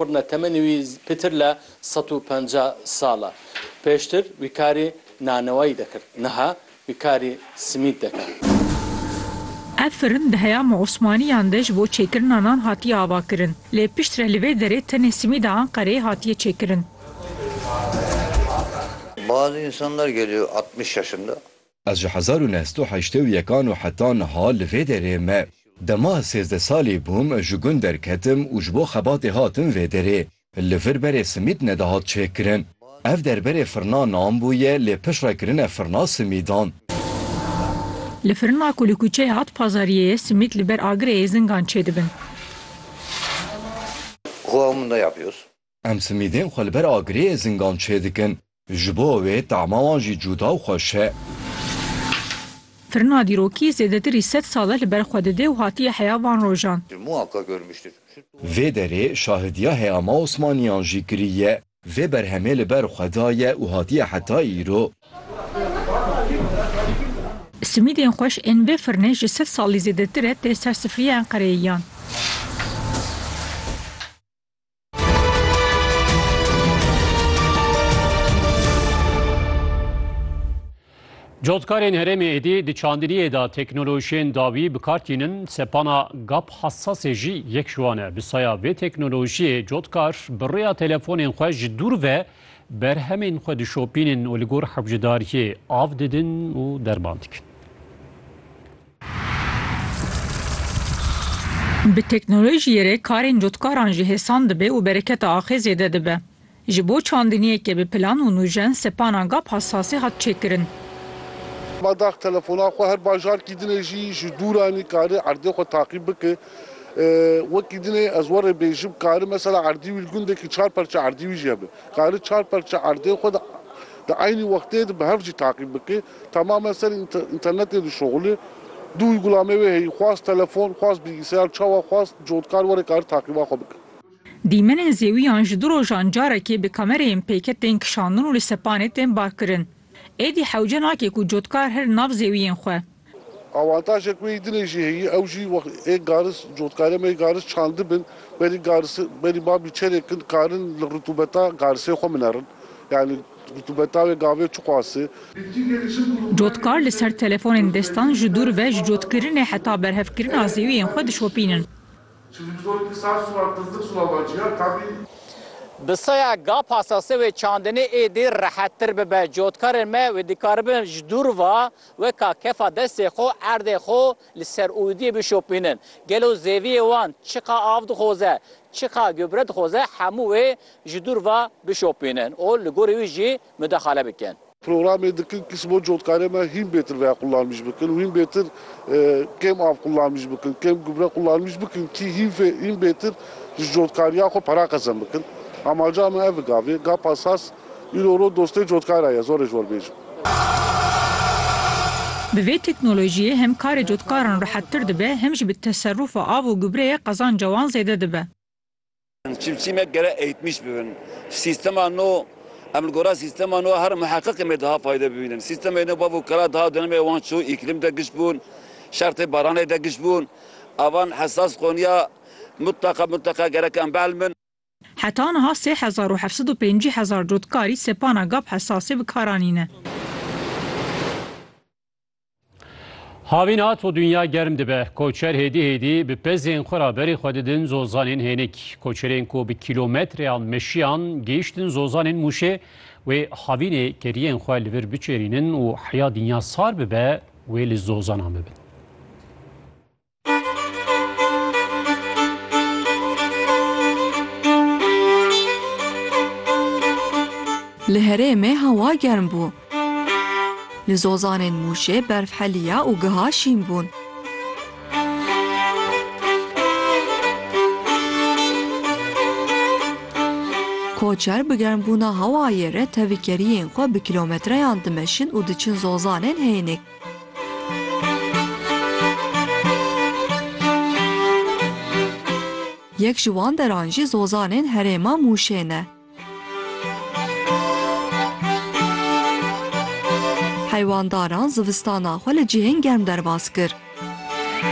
Qurna temenê wî pîtir le sed û penca sal e. Pêştir wî karî nanewayî dekir. Niha wî karî simît deke. Ev firin di heyama Osmanîyan de ji bo çêkirina nan hatiye avakirin. Lê piştre li vê derê tenê simîda Enqereyê hatiye çêkirin. Bazı insanlar geliyor altmış yaşında. Ez ji hezar û neh sed û heştê û yekan û heta niha li vê derê me. Dema ez sêzdeh salî bûm ji gund derketim û ji bo xebatê hatim vê derê. Li vir berê simîd nedihat çêkirin. Ev der berê firna nan bûye lê piştre kirine firna simîdan. Li firina ku li kuçeya At Pazariyê ye simîd li ber agirê êzingan çêdibin. Em simîdên xwe li ber agirê êzingan çêdikin. Ji bo wê tama wan jî cuda û xweş e. Firina dîrokî zêdetirî sed sal e li ber xwe dide û hatiye heya van rojan. Vê derê şahidiya heya ma Osmaniyan jî kiriye. Vê berhemê li ber xwe daye û hatiye heta îro. Simîdên xweş ên vê firinê ji sed salî zêdetir e tê ser sifriya Enqereyê yan. Cotkarên herêmê êdî di çandiniyê de teknolojiyên dawî bi kar tînin, sepana gap hessasê jî yek ji wan e. Bi saya vê teknolojiyê cotkar bi rêya telefonên xwe ji dûr ve berhemên xwe dişopînin û li gor hewcedariyê av didin û derman dikin. Bi teknolojiyê re karên cotkaran jî hêsan dibe û bereketa axê zêde dibe. Ji bo çandiniyeke bi plan û nûjen sepana gap hasasê hat çêkirin. Ma dax telefona xwe her bajarkî dine jî ji dûran nikare erdê xwe taqîb bike. Wekî dine ez were bêjim kare mesela erdî wî li gundekî çar perçe erdî wî jî hebe. Kare çar perçe erdê xwe di eynî wextê de bi hev jî taqîb bike. Temamen serî înternetê dişoxilî. Du uygulameyê wê heyî, xwast telefon, xwast bilgisayar, çawa xwast cotkar were karî taqîba xwe bike. Dîmenên zêwîyan ji du rojan carekê bi kamereyên pêke tên kişandin û li sepanê tên barkirin. Êdî hewce nake ku cotkar herin nav zêwîyên xwe. Awantajek wê yî dinê jî heyî, ew jî wext ê garis cotkarê me yê garis çandibin, berî garis berî babî çerê kin karin li ritûbeta garisê xwe minerin. Yanî. Cotkar li ser telefonên destan ji dûr ve ji cotkirinê heta berhevkirina zêwiyên xwe dişopînin. Bi saya ga pasase wê çandinê êdî rehettir bibe. Cotkarên me wê dikaribin ji dûr ve weka kefa destê xwe erdê xwe Li ser ûdiyê bişopînin. Gelo zeviyê wan çiqa av dixoze, çiqa gubre dixoze hemû wê ji dûr ve bişopînin û li gorî wî jî mudaxale bikin. Programê dikin kis bo cotkarê me hîn bêtir veya qulanmîş bikin û hîn bêtir kêm av qulanmîş bikin, kêm gubre qulanmîş bikin kî hîn bêtir ji cotkariya xwe para qezem bikin. Amaca me ev e gavê, gapa sas. Îro ro dostê cotkay ra ye, zor ê ji we bêjim. Bi vê teknolojiyê hem karê cotkaran rehettir dibe hem jî bi teserufa av û gubreyê qezanca wan zêde dibe. Çîmçîmek gerek eğitmiş bibin. Sîstema no, Em li gora sîstema no her muheqiqê me diha fayde bibînin. Sîstemê no bav û kala diha dönemê wan çû îklîm de giş bûn, şertê baranê de giş bûn. Avan hesas qoniya mutleqa mutleqa gerek em behl bin. Heta niha sê hezar û heft sed û pêncî hezar cotkarî sepana gap hesasê bi kar anîne. Havîn hat û dinya germ dibe. Koçer hêdî hêdî bi pezên xwe re berî xwe didin zozanên hênik. Koçerên ku bi kîlometreyan meşiyan gihîştin zozanên Mûşê wê havînê keriyên xwe li vir biçêrînin û heya dinya sar bibe wê li zozanan bibin. Li herêmê hewa germ bû. Li zozanên Mûşê berf heliya û giha şîn bûn. Koçer bi germbûna hewayê re tevikeriyên xwe bi kîlometreyan dimeşin û diçin zozanên hênik. Yek ji wan deran jî zozanên herêma Mûşê ne. Heywandaran zivistana xwe li cihên germ derbas kir.